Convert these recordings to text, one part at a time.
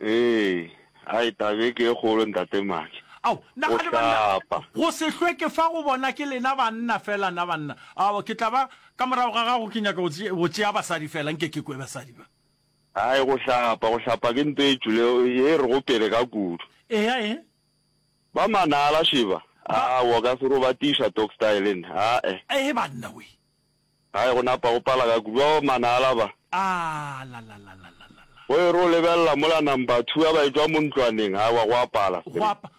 Ee, hai taba e ke e kgolo Ntate Maatla. Ao, na Go ga le banna? hlapa. Go se hlwe ke fa go bona ke lena banna fela na banna. Ao, ke tla ba ka morago ga gago ke nyaka go tše- go tšea basadi fela nke ke kwe basadi ba. Hai go hlapa, go hlapa ke nto e tšule ye re go pele ka kudu. Eya e. Ba manala Sheba. Ba- Aa, wa ka se robatiša Tokstyle nna. Aa-e. Ee banna we. Gae go napa go pala ka kudu. Ao mana alaba. Aalalalalalalala. Go e re o lebelela mola number two ya baetwa mo ntlwaneng, gae wa go a pala. Go a pa.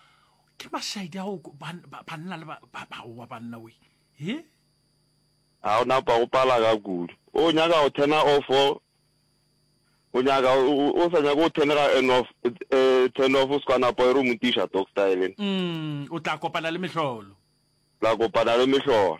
Ke mašaedi ao banna le ba, ba, ba wa banna we. He? Ga go napa go pala ka kudu. O nyaka go turn-a off o, o nyaka, o sa nyake go turn-a ga en off, eh, turn off o se ka napa e re o mo tiša dog style. Umm, o tla kopana le mehlolo. Tla kopana le mehlolo.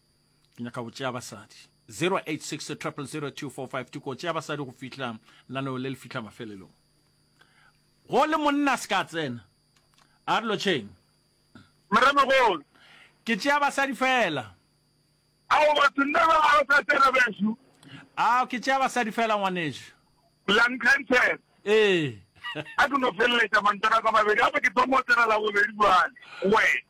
ke nyaka go tšea basadi 0860000245 tuko tšea basadi go fihla laneo le le fihla mafelelong go le monna se ka tsena a re lotšheng moremogolo ke tšea basadi fela ao batho nna ba ga o sa tsena beso ao ke tšea basadi fela ngwaneso langkanter ee a ke no feleletša mantara ka mabedi gape ke thomo tsena la bobedi jale wena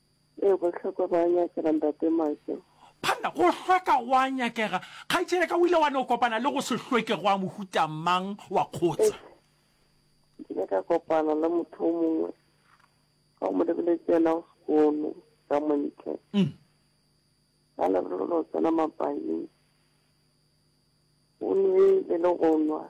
Ee, go hlweka go a nyakega, Ntate Michael. Phanna, go hlweka go a nyakega. Kgaetšedi ya ka, o ile wa no kopana le go se hlweke go a mohuta mang wa kgotsa? Ee, ke ile ka kopana le motho o mongwe ka go mo lebeletse yena go sekono ka montle. Mm. Ka lebelo lo tsena mapaing, o nwele le go nwa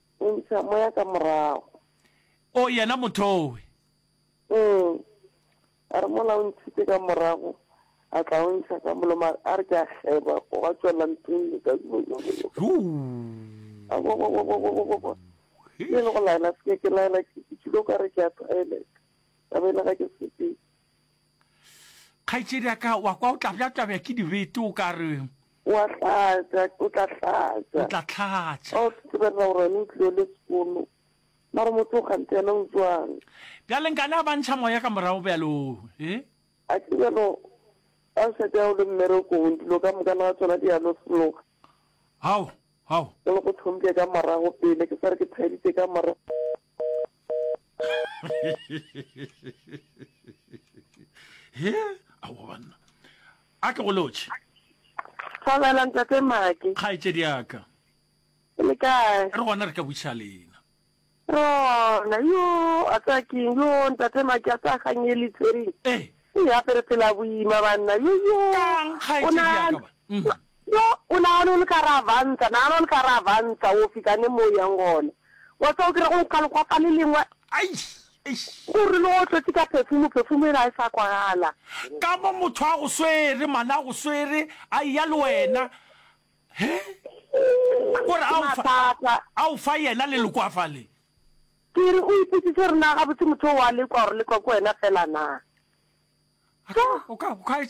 O ntsha moya ka morago. O yena mothowe. Ee, a re mola o ntšhitše ka morago, a tla o ntšha ka moloma, a re ke a kgeba, go ba tšwela ntlong le ka e le go laela seke ke laela ke tšhile o ka re ke a toilet ka be le ga ke sepele Kgaetšedi ya ka, wa kwa o tla bjabjabja ke dibete o ka re. Wa hlatša, o tla hlatša. O tla hlatša. Ba o sesebelela gore wena o tlile le sekolo. Mara motho o kgante yena o jwang? Bjale nkane a ba ntšha moya ka morago bjalo, he? A ke bjalo ba o šetša o le mmerekong, dilo ka moka le ga tsona di a no seloga. Hao, hao. Ke le go thomile ka morago pele, ke sa re ke thaditše ka morago. he ao banna a ke go lotšhe Thabela ntate Maki. kgaetšedi yaka Le kae? re gona re ka buša lena Rona yo a tsa keng yo ntate Maki a tsa ganyeli tsering. ee E ya pere phela boima banna yo yo. kang O kgaetšedi na- yaka ba Mhm. Yo, o nagana o le ka gare ga vanta, nagana o le ka gare ga vanta, o fihla ne mo o yang gona. Wa tseba o kry-a go nkga lekgwapa le lengwe, Aish, eish. o re le go hlotse ka phefumo, phefumo e la e sa kwagala. Ka mo motho a go swere, man, a go swere, a eya le wena, he, o re Ke a o fa, mathata. a o fa yena le lekwafa le. Ke re o ipotsise gore na gabotse motho o a lekwa, gore lekwa ke wena fela na. A ka, o ka, o ka etše.